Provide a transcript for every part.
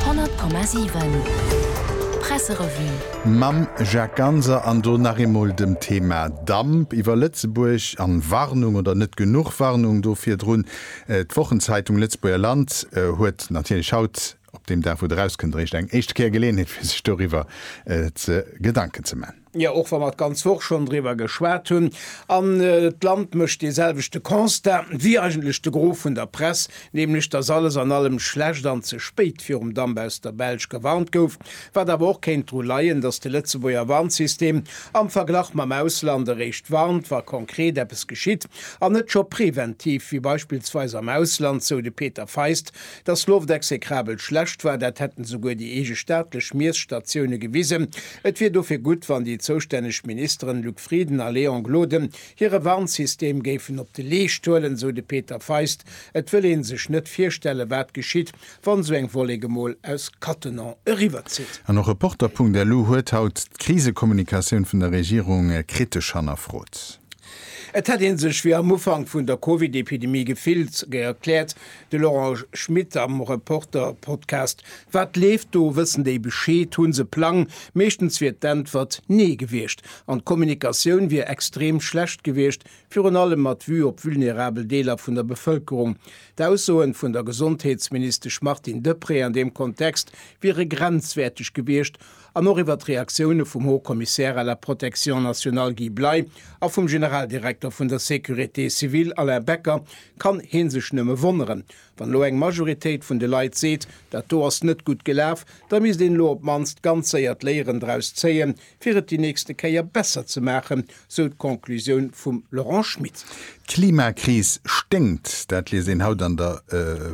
100,7 Presserevue. Mam Jacques Ganser an do nach eemol dem Thema Damp iwwer Lëtzebuerg an Warnung oder net genuch Warnung do virdrun. D'Wochenzeitung Lëtzebuerger Land huet natierlech haut, op deem Dag wou et erauskënnt, eréischt eng éischte Kéier Geleeënheet fir sech doriwwer ze Gedanken ze man. Jo, och wa mer d'ganz Woch schonn driwwer geschwat hunn, an d'Land mécht dee selwechte Constat wéi eigentlech de Gros vun der Press, nämlech datt alles an allem schlecht an ze spéit virum Damp aus der Belsch gewarnt gouf, wat awer och kéint dru leien, datt de Lëtzebuerger Warnsystem am Verglach mam Ausland eréischt warnt, wa konkret eppes geschitt, an net scho preventiv, wéi beispillsweis am Ausland, sou de Peter Feist. Dass d'Loft exekrabel schlecht war, dat hätten souguer déi eege staatlech Miesstatioune gewisen. Et wier dofir gutt, wann déi zoustänneg Ministeren Luc Frieden a Léon Gloden hire Warnsystem géifen op de Leescht huelen, sou de Peter Feist. Et wëll ee sech net virstellen, wat geschitt, wann esou eng Wollek emol aus Cattenom eriwwerzitt. An och Reporter.lu huet haut d'Krisekommunikatioun vun der Regierung kritesch hannerfrot. Et hätt ee sech wéi am Ufank vun der Covid-Epidemie gefillt, erkläert De Laurent Schmit am Reporter-Podcast Wat leeft do? Wëssen déi Bescheed? Hu se Plang? Meeschtens wier d'Äntwert Nee gewiescht an d'Kommunikatioun wier extrem schlecht gewiescht, virun allem mat Vue op vulnerabel Deeler vun der Bevëlkerung. D'Aussoen vun der Gesondheetsministesch Martine Deprez an deem Kontext wiere grenzwäerteg gewiescht an och iwwert d'Reaktioune vum Haut Commissaire à la protection nationale Guy Bley a vum Generaldirekter vun der Sécurité civile Alain Becker, kann hee sech nëmme wonneren. Wann elo eng Majoritéit vun de Leit seet, dat do ass net gutt gelaf, da misst een elo op d'mannst ganz séier d'Léieren draus zéien, fir et déi nächste Kéier besser ze maachen, sou d'Conclusioun vum Laurent Schmit. D'Klimakris sténkt, dat liest een haut an der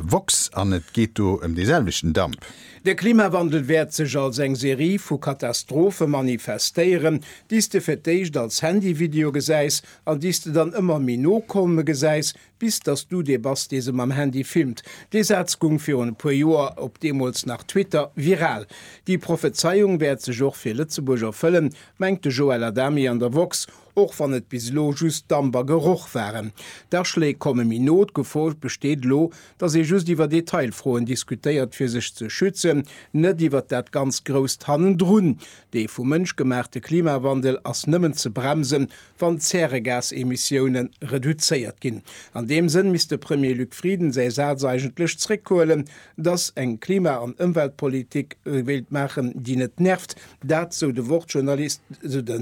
woxx an et geet do ëm dee selwechten Damp. De Klimawandel wäert sech als eng Serie vu Katastrophe manifestéieren, déi s de fir d'éischt als Handyvideo gesäis an déi s de dann ëmmer méi no kolme gesäis, bis dass du dee bass, dee se mam Handy filmt. Dee Saz gung virun e puer Joer, op deemools nach Twitter, viral. Déi Prophezeiung wäert sech och fir Lëtzebuerg erfëllen, mengt de Joël Adami an der woxx. Och wann et bis elo just Damp a Geroch waren. D'Aschléi komme méi no. D'Gefor besteet elo, datt ee just iwwer Detailfroen diskutéiert fir sech ze schützen, net iwwert dat ganz Grousst hannendrun. Dee vum Mënsch gemaachte Klimawandel ass nëmmen ze bremsen, wann d'Zäregasemissioune reduzéiert ginn. An deem Sënn misst de Premier Luc Frieden säi Saz eigentlech zréckhuelen, datt eng Klima an Ëmweltpolitik wéilt maachen, déi net nervt. Dat, sou de Wort-Journalist, sou de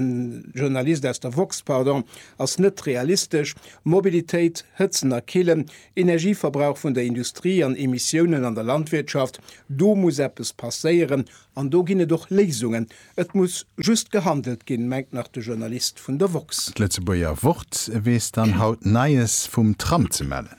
Journalist aus der woxx, pardon, ass net realistesch. Mobilitéit, Hëtzen a Killen, Energieverbrauch vun der Industrie an Emissiounen an der Landwirtschaft, do muss eppes passéieren an do ginn et och Léisungen. Et muss just gehandelt ginn, mengt nach de Journalist vun der woxx. D'Lëtzebuerger Wort weess dann haut Neies vum Tram ze mellen.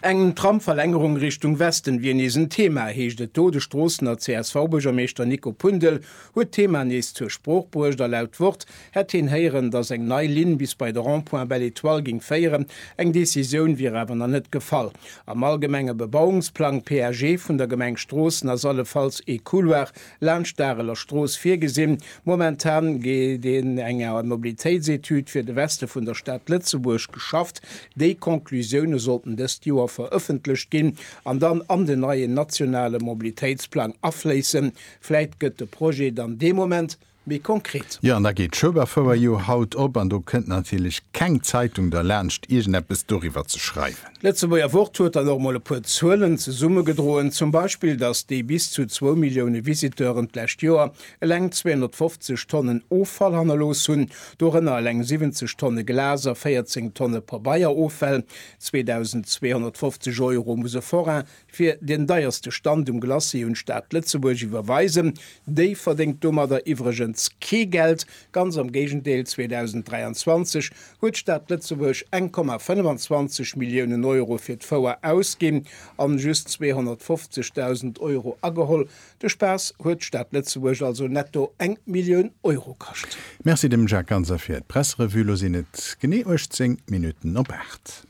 Eng Tramverlängerung Richtung Westen wier nees en Thema, heescht et do. De Stroossener CSV-Buergermeeschter Nico Pundel huet d'Thema nees zur Sprooch bruecht a laut Wort hätt heen héieren, datt eng nei Linn bis bei de Rond-point Belle Etoile géing féieren. Eng Decisioun wier awer nach net gefall. Am allgemenge Bebauungsplang, PAG, vun der Gemeng Stroossen ass allefalls ee Couloir laanscht d'Areler Strooss virgesinn. Momentan gétt een enger Mobilitéitsetüd fir de Weste vun der Stad Lëtzebuerg geschafft. Déi Conclusioune sollten dëst Joer verëffentlecht ginn an dann an den neien nationale Mobilitéitsplang afléissen. Vläit gëtt de Projet dann dee Moment méi konkret. Jo, an da geet d'Schueberfouer jo haut op an do kënnt natierlech keng Zeitung derlaanscht iergendeppes doriwwer ze schreiwen. D'Lëtzebuerger Wort huet dann och mol e puer Zuelen zesummegedroen, zum Beispill, datt déi bis zu zwou Millioune Visiteuren d'lescht Joer eleng 250 Tonnen Offall hannerlooss hunn, dorënner eleng 70 Tonne Glas a 14 Tonne Pabeier-Offäll. 2.250 Euro muss e Forain Fir deen deierste Stand um Glacis un d'Stad Lëtzebuerg iwwerweisen déi verdéngt domadder iwwregens kee Geld, ganz am Géigendeel, 2023 huet d'Stad Lëtzebuerg eng Komma 25 Milliounen Euro fir d'Fouer ausginn an just 250.000 Euro ageholl. De Spaass huet d'Stad Lëtzebuerg also netto eng Millioun Euro kascht. Merci dem Jacques Ganser fir d'Pressrevue. Lo sinn et genee 18 Minutten op 8.